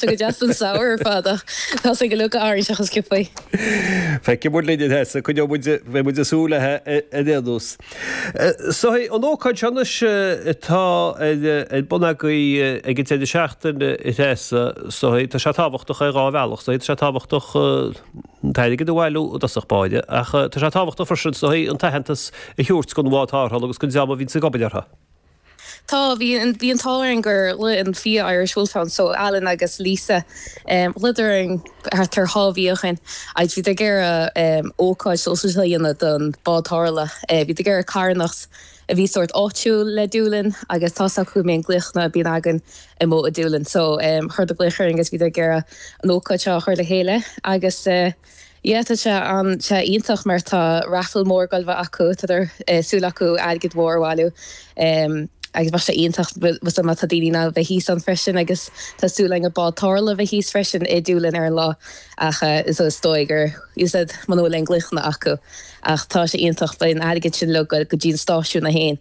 Tá go deas don samhradh ar fad ach tá sé go leoga orainn seo chomh sciobtha. Feicfidh muid linn a Threasa coinneoidh muid beidh muid ag súil léithi ar aon nós. Is dóigh, an ócáid seo anois atá ar bun agaibh ag an deireadh seachtaine a Threasa is dóigh, tá sé tábhachtach ar dhá bhealach is dóigh, tá sé tábhachtach an t-airgead a bhailiú i dtosach báire ach tá sé tábhachtach freisin is dóigh an t-aitheantas a thabhairt don bhád tarrthála agus don dream a bhíonns ag obair orthu. Tá, bhí an, bhí an t-ádh orainn gur ghlaoigh an fia Irish Wolfhounds so Alan agus Lisa em ghlaodar orainn thart ar dhá mhí ó shin agus bhíodar ag iarraidh em ócáid shóisialta a dhéanamh don bád tarrthála eh bhíodar ag iarraidh carthanacht a bhí sórt áitiúil le Dúlainn agus tá's acu go mbíonn glaochanna bíonn againn amuigh i Dúlainn so em chuireadar glaoch orainn agus bhíodar ag iarraidh an ócáid seo a chur le chéile agus eh Yeah tá sé an sé iontach mar tá raffle mór ag goil a bheith acu tá súil acu airgead mhór a bhailiú em agus bheadh sé iontach bhfuil má tá daoine in ann a bheith thíos ann freisin agus tá súil againn an bád tarrthála a bheith thíos freisin i Doolin ar an lá ach eh so is dóigh gur you said muna bhfuil aon glaochanna acu ach tá sé iontach beidh an airgead sin uilig go dtí an stáisiún é féin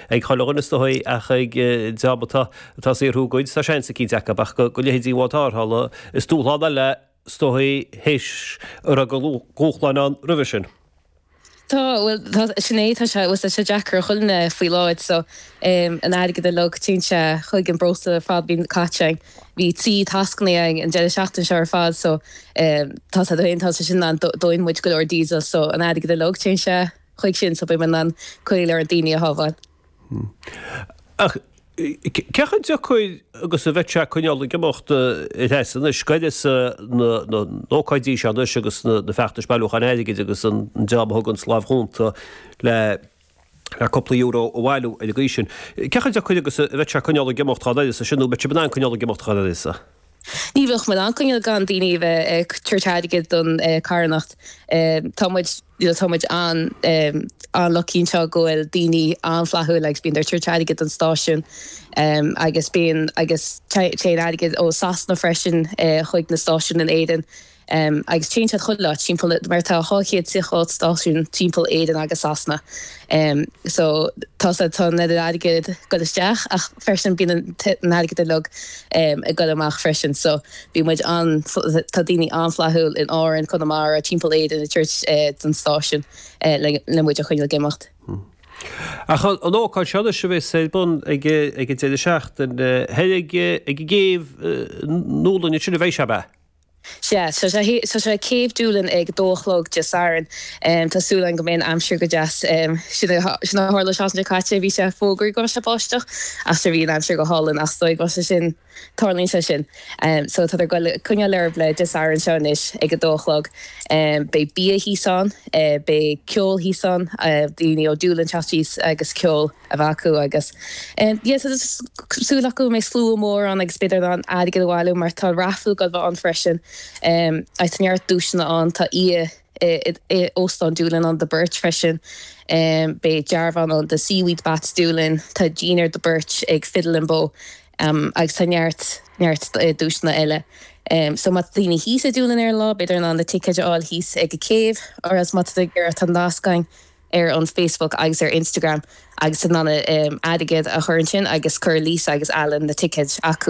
ag chuile dhuine is dóigh ach ag dream atá ag saothrú a gcuid, tá seans eicínt acu ach do leithéidí an bhád tarrthála is dúshlán eile is dóigh théis a raibh de dhúshláin ann roimhe sin. Tá, bhuel sin é, tá sé, bhuel tá sé deacair ar chuile dhuine faoi láthair so an airgead uilig téann sé chuig an breosla ar fad a bhíonn caite ann, bhí trí tascanna ann an deireadh seachtaine seo ar fad so tá sé, tá sé sin ann dónn muid go leor diesel so an airgead uilig téann sé. chuig sin so beidh muid in ann go leor daoine a shábháil. Hmm. Ach cé chomh deacair agus a bheadh sé coinneáil ag imeacht a Threasa anois, d'uireasa na na n-ócáidí seo anois agus na na feachtais bailiúcháin airgid agus an dream a thuganns lámh chúnta le le cúpla euro a bhailiú ar an gcaoi sin. Cé chomh deacair agus a bheadh sé coinneáil ag imeacht dhá n-uireasa sin nó an mbeadh sibh in ann coinneáil ag imeacht thall ar sa? Ní bheadh muid in ann coinneáil gan daoine a bheith ag tabhairt airgead don carthanacht. Tá muid, you know, tá muid an-lucky anseo go bhfuil daoine an-fhlaithiúil agus bíonndar ag tabhairt airgead don stáisiún agus bíonn, agus téann airgead ó Sasana freisin chuig na stáisiúin in Éirinn. Em, agus téann siad chuile áit timpeall na, mar tá dhá chéad triocha ocht stáisiún timpeall Éireann agus Sasana. Em, so, tá siad, tá an oiread airgead ag goil isteach ach freisin bíonn an, an t-airgead uilig, em, ag goil amach freisin. So, bíonn muid an-fl, tá daoine an-flaithiúil in Árainn, Conamara, timpeall Éireann ag tabhairt, eh, don stáisiún, eh, le, le muid a choinneáil ag imeacht. Hmm. Ach an, an ócáid seo anois a bhéas ar bun ag, ag an deireadh seachtaine, eh, thoir ag, ag an gcéibh, eh, i nDúlainn, ansin a bheidh sé, ab ea? Sea, tá sé, tá sé Céibh Doolin ag dó a chlog Dé Sathairn. Tá súil agam go mbeidh an aimsir go deas. Sin a, sin a tharla an tseachtain seo caite, bhí sé fógraithe go mbeadh sé báisteach ach sure bhí an aimsir go hálainn ach is dóigh go mbeadh sé sin, tarlaíonn sé sin. So tádar goil, coinneáil ar aghaidh le Dé Sathairn seo anois ag a dó a chlog. Beidh bia thíos ann, beidh ceol thíos ann, daoine ó Doolin ag teacht síos agus ceol. a bheith acu agus súil acu go mbeidh slua mór ann agus b'fhéidir airgead a bhailiú mar tá raifil ag goil ann freisin agus tá neart duaiseanna ann. Tá oíche i óstán Doolin ann do beirt freisin. Beidh dearbhán ann do Seaweed Baths Doolin, tá dinnéar do beirt ag Fiddle and Bow agus tá neart neart duaiseanna eile. So má tá daoine thíos i Doolin ar an lá b'fhéidir in ann na ticéid a fháil thíos ag an céibh or else má tá tú ag iarraidh tá nasc againn. ar an Facebook agus ar Instagram agus in ann an airgead a chur ansin agus chuir Lisa agus Alan na ticéid acu.